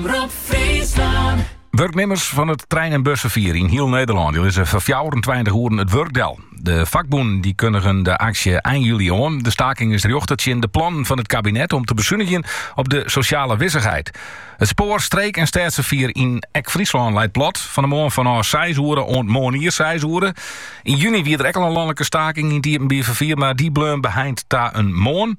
Omrop Friesland. Wurknimmers fan it trein- en busferfier yn hiel Nederlân die lizze foar 24 oeren it wurk del. De vakbûnen die kundigen de aksje ein juli oan. De staking is rjochte tsjin de plannen fan it kabinet om te besunigjen op de sosjale wissichheid. It spoar, streek en stêdsferfier yn ek Fryslân leit plat. Fan de moarn fanôf 6 oere oant moarnier 6 oere. Yn juni wie der ek al in lanlike staking yn it iepenbier ferfier, mar die bleaun beheind ta in moarn.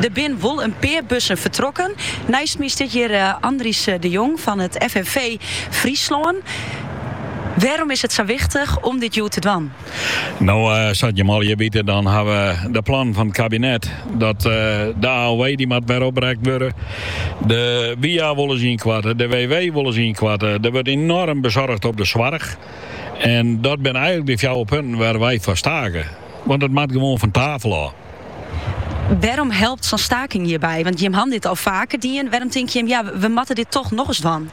Der binne wol in pear bussen fertrokken. Neist my stiet hjir Andries de Jong fan it FNV Fryslân. Wêrom is it sa wichtich om dit hjoed te dwaan? No, sa't jim allegear witte, dan ha we de plannen fan it kabinet dat de AOW dy moat wer oprekt wurde. De WIA wolle se ynkoartsje, de WW wolle se ynkoartsje. Der wurdt enoarm besunige op de soarch. En dat binne eigenlik de fjouwer punten wêr't wy foar stake. Want it moat gewoan fan tafel ôf. Wêrom helpt sa'n staking hjirby? Want jimme hawwe dit al faker dien. Wêrom tink jimme, ja, we moatte dit toch nochris dwaan?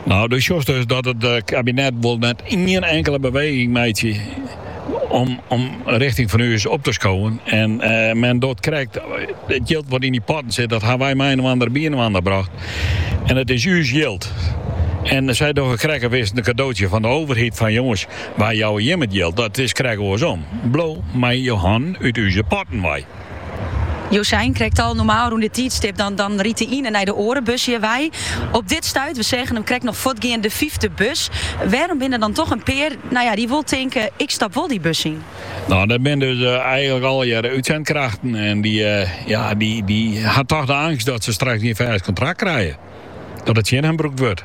No, do sjochst dus dat it kabinet wol net ien inkele beweging meitsje om richting fan ús op te skowen. En men docht krekt, it jild wat yn dy potten sit, dat hawwe wy mei-inoar byinoar brocht. En it is ús jild. En sy dogge krekt as is it in kadootsje fan de overheid, fan jonges, Wy jouwe jimme it jild, dat is krekt oarsom. Bliuw mei jo hannen út úze potten wei. Jo seine krekt al, normaal rûn dit tiidstip, dan rydt de iene nei de oare bus hjir wei. Op dit stuit, we seagen him krekt noch fuortgean, de fyfde bus. Wêrom binne der dan toch in pear, nou ja, dy't wol tinke, ik stap wol dy bus yn? Nou, dat binne dus eigenlik allegearre útsendkrachten en dy, ja, dy ha toch de angst dat se straks gjin fêst kontrakt krije, dat it tsjin har brûkt wurdt.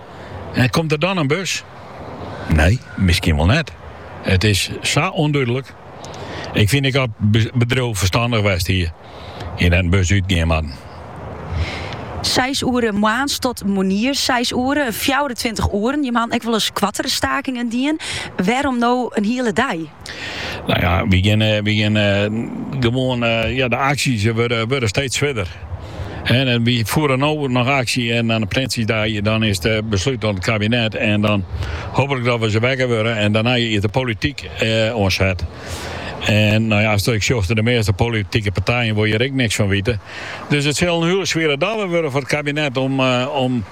En komt der dan in bus? Nee, miskien wol net. It is sa ûndúdlik. Ik fyn ek dat it bedriuw ferstannich west hie en dat der gjin bus útgean moat. Seis oere moarns tot moarnier seis oere, fjouwerentweintich oeren. Jimme hawwe ek wol ris koartere stakingen dien. Wêrom no in hiele dei? Nou ja, wy geane wy geane gewoan ja de aksjes wurde wurde steeds furder. En en wy voeren no noch aksje en nei de Prinsjesdei dan is it beslút oan it kabinet en dan hooplik dat se wekker wurde en dêrnei is de polityk oan set. En nou ja as ik sjoch de measte politike partijen wolle der ek niks fan wite. Dus it sil in hiele swiere dobber wurde foar it kabinet om om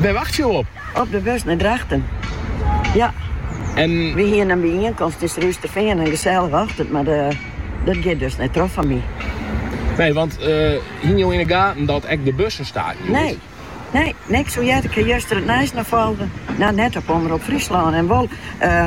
Wêr wachtsje jo op? Op de bus nei Drachten. Ja. En... Wy hiene in byienkomst yn Surhústerfean in gesellige ochtend, mar dat giet dus net troch foar my. Nee, want uh, hiene jo in de gaten dat ek de bussen stake hjoed? Nee. Nee, niks. Hoe hearde ik juster het nijs nochal folge? Nou, net op Omroep Friesland. En wol, uh,